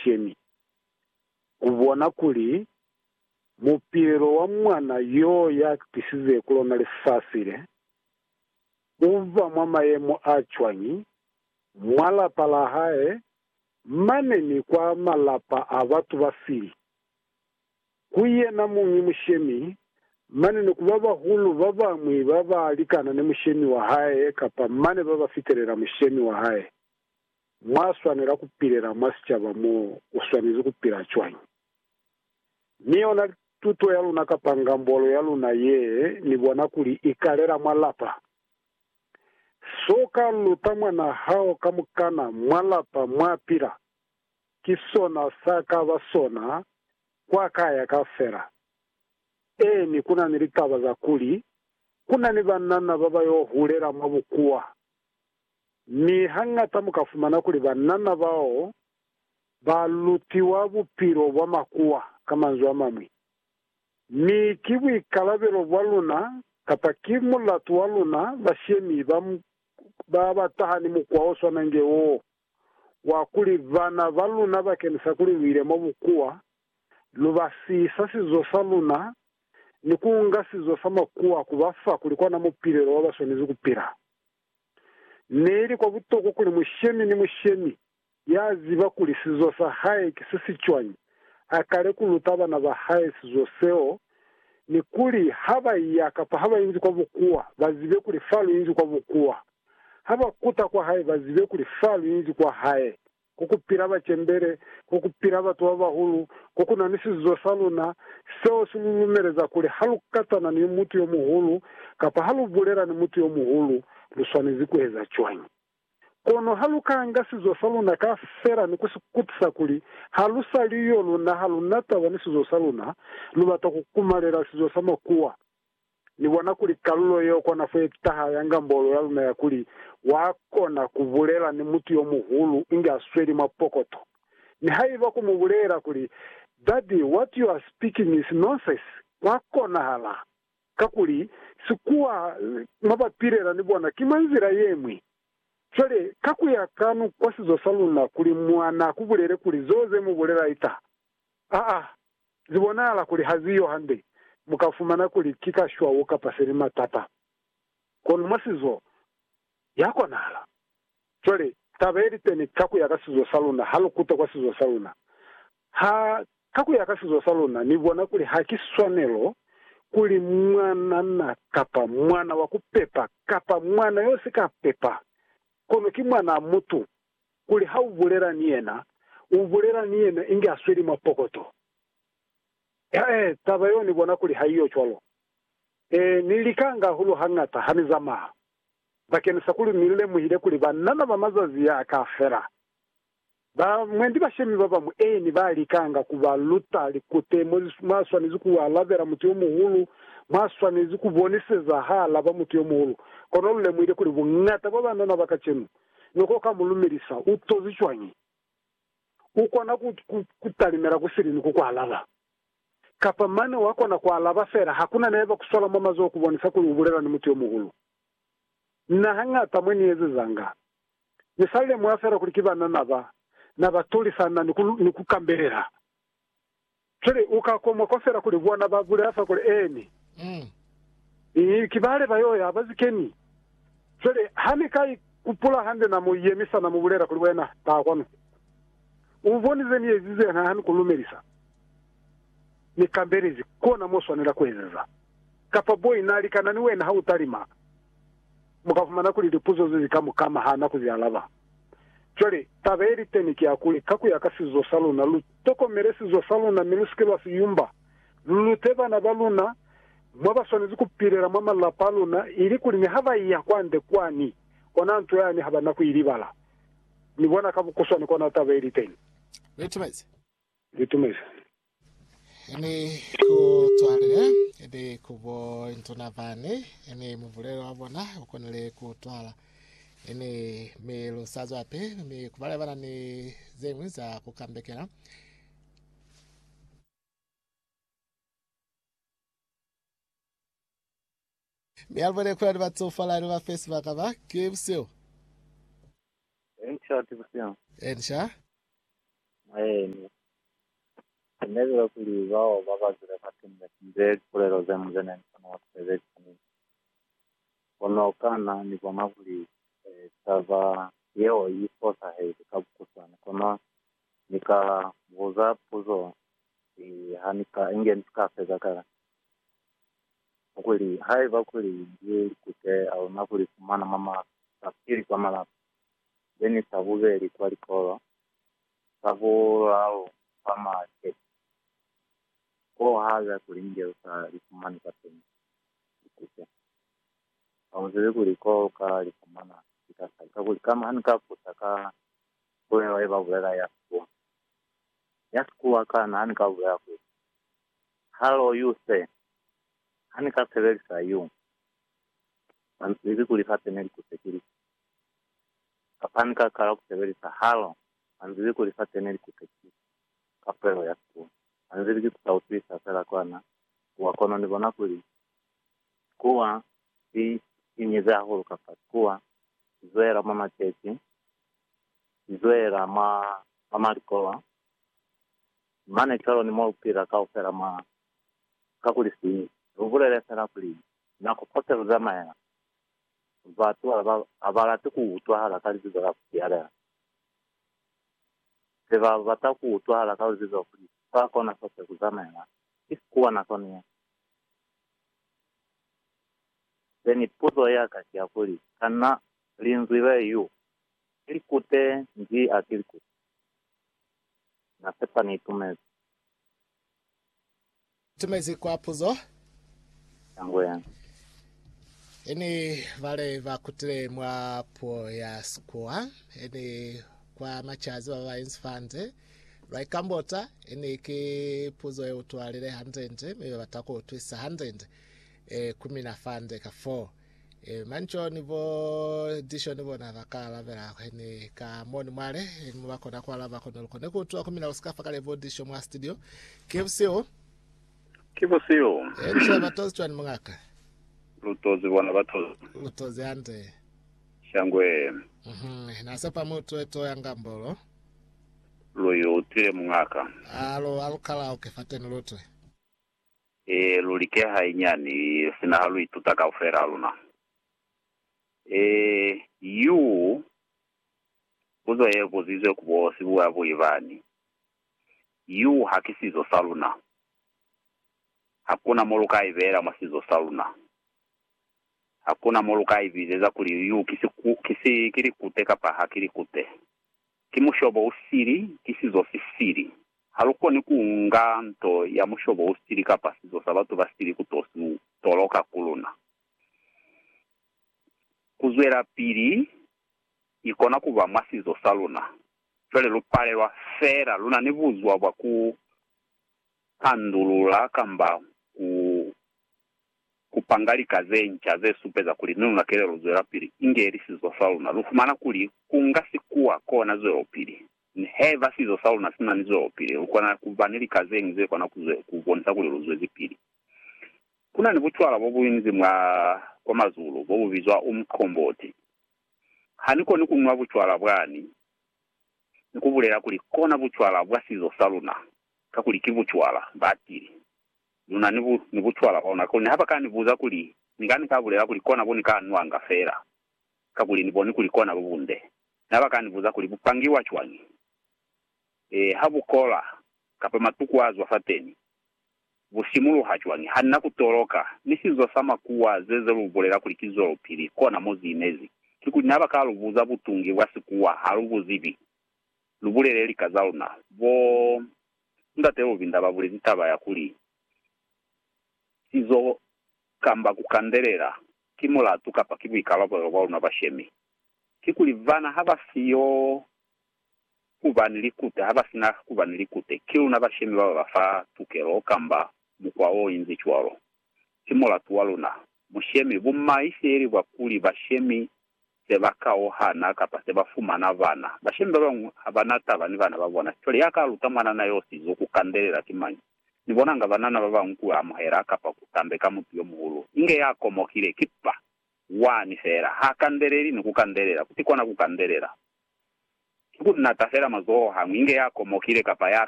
Shemi ku bona kuli mupilelo wa Mwana yo ya tisize ku lona lifasi le, u ba mwa mayemo a cwañi mwa lapa la hae mane ni kwa malapa a batu ba sili ku yena muñi mushemi mane ni ku babahulu ba bañwi ba ba likana ni mushemi wa hae kapa mane ba ba fitelela mushemi wa hae. Mwa swanela ku pilela mwa sicaba mo u swanezi ku pila cwañi? Mi yona tuto ya luna kapa ngambolo ya luna ye ni bona kuli i kalela mwa lapa. So ka luta mwana hao kamukana mwa lapa mwa pila, ki sona sa ka ba sona kwa ka ya ka fela. Ee, ni ku na ni litaba za kuli ku na ni banana ba ba yo hulela mwa bukuwa. Mi hañata mu ka fumana kuli banana bao ba lutiwa bupilo bwa makuwa, ka manzwi a mañwi. Mi ki buikalabelo bwa luna, kapa ki mulatu wa luna, bashemi ba, ba ba taha ni mukwa o swana inge woo, wa kuli bana ba luna ba kenisa kuli lu ile mwa bukuwa, lu ba sisa sizo sa luna, ni ku nga sizo sa makuwa ku ba fa kuli kona mupilelo wa ba swanezi ku pila. Neili kwa butokwa kuli mushemi ni mushemi ya ziba kuli sizo sa hae ki se si cwañi, a kale ku luta bana ba hae sizo seo, ni kuli ha ba iya kapa ha ba inzi kwa bukuwa, ba zibe kuli fa lu inzi kwa bukuwa. Ha ba kuta kwa hae, ba zibe kuli fa lu inzi kwa hae. ku ku pila bacembele, ku ku pila batu ba bahulu, ku ku na ni sizuzo sa luna, seo si lu lumeleza kuli ha lu katana ni mutu yo muhulu kapa ha lu bulela ni mutu yo muhulu, lu swanezi ku eza cwañi? Kono ha lu ka nga sizuzo sa luna kaufela ni ku si kutisa kuli ha lu sa li yo luna, ha lu na taba ni sizuzo sa luna, lu bata ku kumalela sizuzo sa makuwa. Ni bona kuli kalulo yeo kona fo ye taha ya ngambolo ya luna ya kuli, Wa kona ku bulela ni mutu yo muhulu inge a sweli mwa pokoto. Nihaiba ku mu bulela kuli, Daddy, what you are speaking is nonsense, kwa konahala. Kakuli, sikuwa mwa ba pilela ni bona ki mwa nzila ye ñwi. Cwale, ka ku ya kanu kwa sizo sa luna, kuli mwana a ku bulele kuli zeo ze mu bulela i taha. Aa! Zi bonahala kuli ha zi yo hande, mu ka fumana kuli ki ka shwau kapa se li matata. Kono mwa sizo, ya konahala. Cwale, taba ye li teni ka ku ya ka sizo sa luna, ha lu kuta kwa sizo sa luna. Ha, ka ku ya ka sizo sa luna, ni bona kuli ha ki swanelo kuli mwanana kapa mwana wa ku pepa kapa mwana yo si ka pepa, kono ki mwanaa mutu, kuli ha u bulela ni yena, u bulela ni yena inge a sweli mwa pokoto. He, taba yeo ni bona kuli ha iyo cwalo. Ee, ni likanga hahulu hañata ha ni zamaya, bakenisa kuli ni lemuhile kuli banana ba mazazi a ka fela, ba mwendi bashemi ba bañwi, ee, ni ba likanga ku ba luta likute mo mwa swanezi ku alabela mutu yo muhulu, mwa swanezi ku boniseza ha alaba mutu yo muhulu. Kono lu lemuhile kuli buñata bwa banana ba kacenu ne ko ka mu lumelisa, u tozi cwañi? U kona ku, ku, ku talimela ku sili ni ku ku alaba. Kapa mane wa kona ku alaba fela ha ku na neba ku swala mwa mazoho ku bonisa kuli u bulela ni mutu yo muhulu. Na hañata mwe ni ezezanga, ni sa lemuha fela kuli ki banana ba na ba tulisa na ni ku, ni ku kambelela. Cwale u ka komwa kwa fela kuli bona ba bulela fa kuli, Ee, ni. Ni, ki bale ba yo ya, ba si ke ni. Cwale, ha ni ka i kupula hande na mu yemisa, na mu bulela kuli, Wena, taha kwanu. U boni ze ni ezize na ha ni ku lumelisa? Ni kambelezi. Kona mo swanela ku ezeza. Kapa boyi na likana ni wena ha u talima, mu ka fumana kuli lipuzo ze zi ka mu kama ha na ku zi alaba. Cwale, taba ye li teni ki ya kuli, ka ku ya ka sizo sa luna, lu tokomele sizo sa luna mi lu si ke lwa si yumba. Lu lute bana ba luna mwa ba swanezi ku pilela mwa malapa a luna, ili kuli ni ha ba iya kwande kwani, ona nto yani ha ba na ku i libala. Ni bona ka bukuswane kona taba ye li teni. Li tumezi. Li tumezi. Ni ku twalile, ni ku bo ntuna bani, ni mubulelo wa bona ukonile ku twala. Ni, mi lu sa zwapi, mi ku bale bana ni zeñwi za ku kambekela. Mi alubona kuli ali batsofala ali bafe sibaka ba ki buseo. Enca ki buseo. Enca. Maeni. Kunebile kuli bao babazile batumile kunze lipulelo zemu zene nikona wa kusebelisa ni nto. Kono kana nibona kuli taba yeo i fosahezi ka bukuswana? Kono nika buza puzo hii hanika inge nisika feza kale. Kuli, haiba kuli Li kuteya luna ku Li fumana mwa ma, sa pili kwa malapa, be ni sa bubeli kwa likolo, sa bulalu kwa ma chechi, koo, haiba kuli nge lu sa Li fumani kwateni, Li kute. Ha mu zibi kuli ko lu ka Li fumana ki ka sali. Kakuli, kama ha ni ka busa ka pulelo ye ba bulela ya Sikuwa, ya Sikuwa, kana ha ni ka bulela kuli, Hallo you sir, ha ni ka sebelisa you mans ili ku liface ne li kutekilisa, kapa ha ni ka kala ku sebelisa hallo mans ili ku liface ne li kutekilisa ka puelo ya sikulu, mans ili ki ku sa utwisa fela kwa na kuwa kono ni bona kuli sikuwa si inyize hahulu kapa sikuwa si zwela mwa maceci, si zwela mwa, mwa malikowa, Mane cwalo ni mo lu pila kaufela mwa. Kakuli si lu bulele fela kuli nako kote lu zamaela, batu ha ba, ha ba lati ku utwahala ka libizo la ku sialela. Se ba bata ku utwahala ka libizo kuli fa kona kote ku zamaela, ki sikuwa nakoni ye. Se ni puzo ya ka ki ya kuli, Kana Linzwi le, Yu, ki likute, Nji a ki likute? Na sepa ni itumezi. Tumezi kwa puzo. Yangu yena. Ini bale ba kutile mwa puo ya Sikuwa, ini kwa machazi ba ba inzi fande, lwa ikambota, ini ki puzo ye utwalile handende, mi ba bata ku utwisa handende, e, ku mina fande ka foo. Eh, mani co ni bo disho ni bona ba ka alabela kwe ni ka mo ni mwale ni mo ba kona ku alaba kone lukone ku utwa ku mina lu sika fa kale bo disho mwa studio ke busiu Ki busiu. eh msha ba tozi cwani mungaka Lutozi bona batozi. lu tozi hande Shangwe. mhm na se pa mutu eto ya ngambolo Luyu utile mungaka. alo alukala o ke fateni lutwe E, lu like hainyani, sina ha lu ituta kaufela ha luna. E, yu, puzo ye buzizwe ku bo sibuyabuyi bani, Yu ha ki sizo sa luna. Hakuna mo lu ka ibeela mwa sizo sa luna. Hakuna mo lu ka ibizeza kuli yu ki siku, ki si, ki likute kapa ha ki likute. Ki mushobo u sili, ki sizo si sili. Ha lu koni ku nga nto ya mushobo u sili kapa sizo sa batu ba sili ku to si lu toloka ku luna. Ku zwelapili ni kona ku ba mwa sizo sa luna, cwale lu palelwa fela lu na ni buzwa bwa ku pandulula kamba ku Ku panga lika ze nca ze supeza kuli ni luna kelelo zwelapili inge li sizo sa luna, lu fumana kuli ku nga sikuwa kona zwelopili. Mi haiba sizo sa luna si na ni zwelopili, lu kona ku ba ni lika ze ñwi ze kona ku ku bonisa kuli lu zwezipili. Ku na ni bucwala bo bu inizi mwa kwa mazulu bo bu bizwa umqomboti. Ha ni koni ku nwa bucwala bwani, ni ku bulela kuli kona bucwala bwa sizo sa luna, kakuli ki bucwala, ba tili. Lu na ni, ni bucwala bwa luna, kakuli ha ba ka ni buza kuli ni ka, ni ka bulela kuli kona bo ni ka nwanga fela, kakuli ni boni kuli kona bo bunde. Na ba ka ni buza kuli bu pangiwa cwañi, ee, ha bu kola, kapa matuku a zwa fateni, bu simuluha cwañi. Ha ni na ku toloka ni sizo sa makuwa ze, ze lu bulela kuli ki zwelopili, kona mo zi inezi. Kikuli na ba ka lu buza butungi bwa sikuwa, ha lu bu zibi. Lu bulele lika za luna. Bo Ndate Lubinda ba bulezi taba ya kuli, Sizo kamba ku kandelela, ki mulatu kapa ki buikalabelo bwa luna bashemi. Kikuli bana ha ba si yo ku ba ni likute, ha ba sina ku ba ni likute, ki luna bashemi ba ba ba fa tukelo kamba mukwa o inzi cwalo. Ki mulatu wa luna. Mushemi, bumahiseli bwa kuli bashemi se ba kauhana kapa se ba fumana bana. Bashemi ba bañwi ha ba na taba ni bana ba bona. Cwale ya ka luta mwanana yo sizo ku kandelela ki mañi? Ni bonanga banana ba bañwi ku amuhela kapa ku tambe ka mutu yo muhulu inge ya komohile, ki ppa, wani feela. Ha kandeleli ni ku kandelela. Ku si kona ku kandelela. Ki ku nata feela mazoho hañwi inge ya komohile kapa ya.